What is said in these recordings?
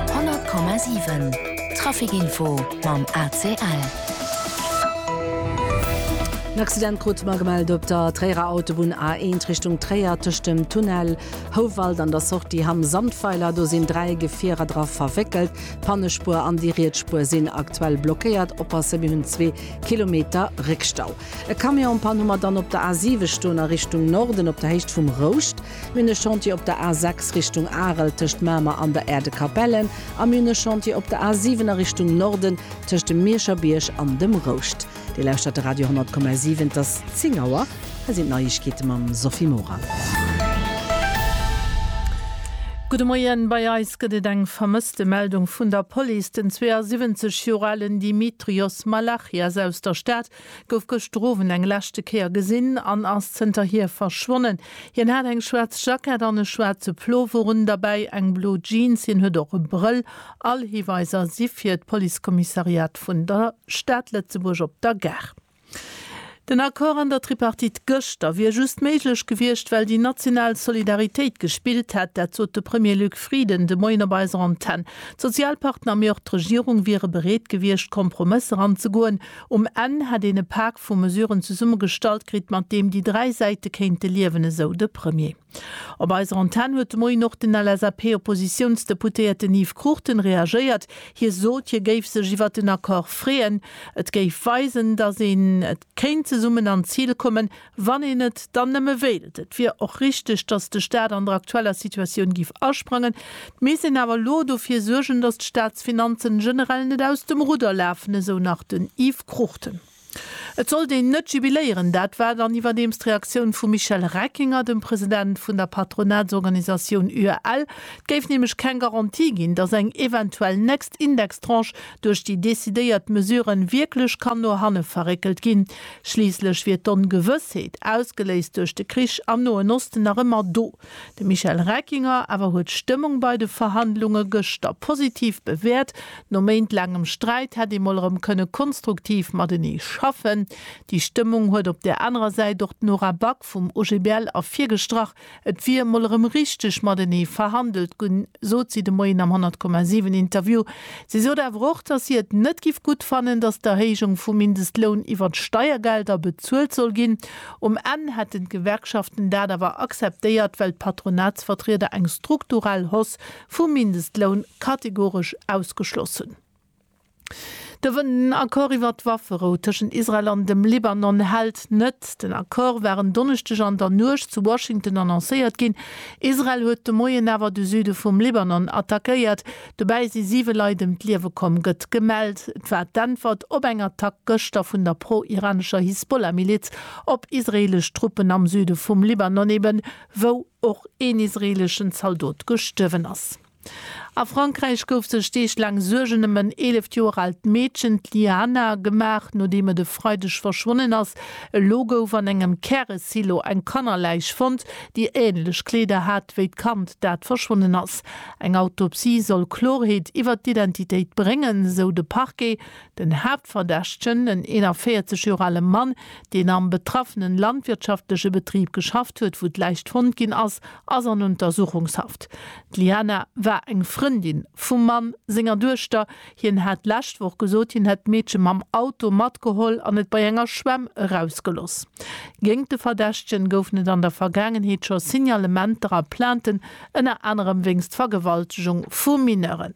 100,7 Trafic Info mam ACL. En Accident krute mer gemellt op der Tréierer Autobunn A1 Richtung Tréier. Tëscht dem Tunnel Houwald an der Sortie Hamm Sandweiler, do sinn dräi Gefierer dra verwéckelt. D'Pannespuer an déi riets Spuer sinn aktuell blockéiert. Oppasse, mir hunn zwee Kilometer Réckstau. E Camion en Panne hu mer dann op der A7 stoen a Richtung Norden op der Héicht vum Rouscht. Mir hunn e Chantier op der A 6 Richtung Arel tëscht Mamer an der Aire de Capellen a mir hunn e Chantier op der A 7 a Richtung Norden tëscht dem Mierscher Bierg an dem Rouscht. Dir lauschtert de Radio 10,7, et ass 10 Auer. Hei sinn d'Neiegkeete mam Sophie Morang. Gudde Moien, Bei eis gëtt et eng Vermësstemeldung vun der Police. Den 72 Joer alen Dimitrios Malachias aus der Stad gouf gëschter Owend eng leschte Kéier gesinn an ass zënterhier verschwonnen. Hien hat eng schwaarz Jackett an e schwaarze Plover un, derbäi eng blo Jeans. Hien huet och e Brëll. All Hiweiser si fir d'Policekommissariat vun der Stad Lëtzebuerg op der Gare. Den Accord an der Tripartite gëschter wier just méiglech gewiescht, well déi national Solidaritéit gespillt hätt. Dat sot de Premier Luc Frieden de Moien op eiser Antenn. D'Sozialpartner, mee och d'Regierung wiere bereet gewiescht, Kompromësser anzegoen. Um Enn hätt een e Pak vu Mesuren zesummegestallt kritt, mat deem déi dräi Säite kéinte liewen, esou de Premier. Op eiser Antenn huet de Moien och den LSAP-Oppositiounsdeputéierten Yves Cruchten reagéiert. Hie sot, hie géif sech iwwert den Accord freeën. Et géif weisen, datt een et kéint zesummen an d'Zil kommen, Wann een et dann nëmme wéilt, et wier och richteg, datt de Staat an der aktueller Situatioun géif asprangen, 't misst een awer elo dofir suergen, datt d'Staatsfinanzen generell net aus dem Rudder lafen, esou nach den Yves Cruchten. Et sollt een net jubiléieren, dat war dann iwwerdeems d'Reaktioun vum Michel Reckinger, dem President vun der Patronatsorganisatioun UEL. Et géif nämlech keng Garantie ginn, datt eng eventuell nächst Indextranche duerch déi decidéiert Mesuren wierklech kann no hanne verréckelt ginn. Schliisslech wier d'Ongewëssheet, ausgeléist duerch de Krich am Noen Osten, nach ëmmer do. De Michel Reckinger awer huet d'Stëmmung bei de Verhandlunge gëschter positiv bewäert. No méintlaangem Sträit hätt ee mol erëm kënne konstruktiv matenee schaffen. Déi Stëmmung huet op där anerer Säit och d'Nora Back vum OGBL ervirgestrach, Et wier mol erëm richteg matenee verhandelt gunn, sot si de Moien am 100,7 Interview. Si sot awer och, datt si et net giff gutt fannen, datt d'Erhéijung vum Mindestloun iwwer d'Steiergelder bezuelt soll ginn. Um Enn hätten d'Gewerkschaften dat awer akzeptéiert, well d'Patronatsvertrieder eng strukturell Hausse vum Mindestloun kategoresch ausgeschloss hunn. Den Accord iwwer d'Wafferou tëschent Israel an dem Libanon hält net. Den Accord war en Donneschdeg an der Nuecht zu Washington annoncéiert ginn. Israel huet de Moien awer de Süde vum Libanon attackéiert. Dobäi si siwe Leit ëm d'Liewe komm, gëtt gemellt. Et war d'Äntwert op eng Attack gëschter vun der pro-iranescher Hisbollah-Miliz op israeelesch Truppen am Süde vum Libanon, eben wou och een israeeleschen Zaldot gestuerwen ass. A Frankräich gouf sech Deeg laang Suergen ëm en 11 Joer aalt Meedchen, d'Liana, gemaach, nodeem et e Freideg verschwonnen ass. Elo gouf an engem Käresilo eng Kannerläich fonnt, déi änlech Kleeder hat wéi d'Kand, dat verschwonnen ass. Eng Autopsie soll Klorheet iwwert d'Identitéit bréngen, sou de Parquet. Den Haaptverdächtegen, en 41 Joer ale Mann, deen am betraffene landwirtschaftleche Betrib geschafft huet, wou d'Läich fonnt ginn ass, ass an Untersuchungshaft. D'Liana war eng Frëndin vum Mann senger Duechter. Hien hat d'lescht Woch gesot, hien hätt d'Meedche mam Auto matgeholl an et bei enger Schwämm erausgeloss. Géingt de Verdächtegen goufen et an der Vergaangenheet scho Signalementer a Plainten, ënner anerem wéinst Vergewaltegung vu Mineuren.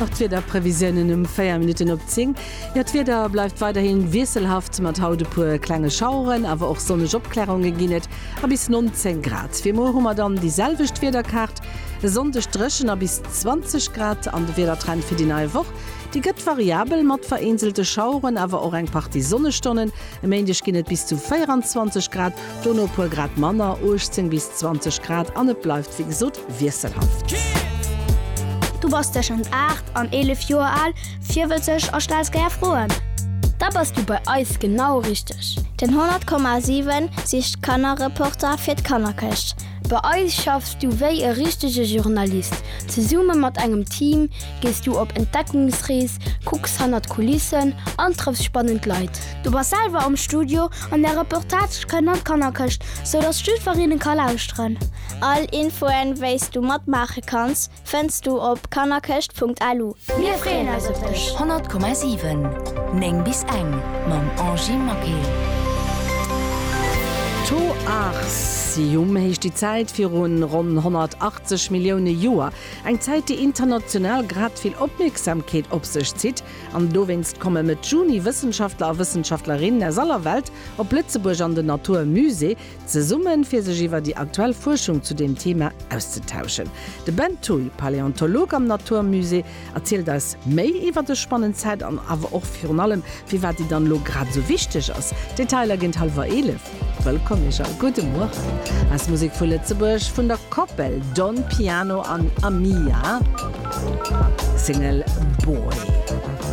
Nach d'Wiederprevisiounen um 4 Minutten op 10. Jo, d'Wieder bleift weiderhi wiesselhaft, mat haut e puer klenge Schaueren, awer och sonneg Opklärunge ginn et a bis 19 Grad. Fir muer hu mer dann déi selwecht Wiederkaart, e Sonndeg dréchen a bis 20 Grad. An de Wiedertrend fir déi nei Woch, dee gëtt variabel mat vereenzelte Schaueren, awer och eng Partie Sonnestonnen. E Méindeg ginn et bis zu 24 Grad. Dono puer Grad manner, 18 bis 20 Grad, an et bleift wéi gesot wiesselhaft. Du bass tëschent 8 an 11 Joer al, virwëtzeg a stells gär Froen? Da bass du bei eis genau richteg! Den 100,7 sicht Kannerreporter fir d'Kannerkëscht. Bei eis schaffs du wéi e richtege Journalist. Zesumme mat engem Team gees du op Entdeckungsrees, kucks hannert d'Kulissen an trëffs spannend Leit. Du bass selwer am Studio an der Reportage kënnt an d'Kannerkëscht, sou datt d'Stüferinnen ka lauschteren. All Infoen, wéis du matmaache kanns, fënns du op kannerkëscht.lu. Mir freeën eis op dech! 100,7 9 bis eng mam Angie Maquet. To Arsium heescht déi Zäit virun ronn 180 Millioune Joer. Eng Zäit, déi international grad vill Opmierksamkeet op sech zitt, An dowéinst komme Mëtt Juni Wëssenschaftler a Wëssenschaftlerinnen aus aller Welt op Lëtzebuerg an den Natur Musée zesummen, fir sech iwwer déi aktuell Fuerschung zu deem Thema auszetauschen. De Ben Thuy, Paläontolog am Natur Musée, erzielt eis méi iwwer dës spannend Zäit an awer och virun allem, firwat déi dann elo grad esou wichteg ass. D'Detailer géint hallwer 11. Wëllkomm iech a gudde Mueren aus Musek vu Lëtzebuerg vun der Koppel Don Piano an Amia, Single Boy.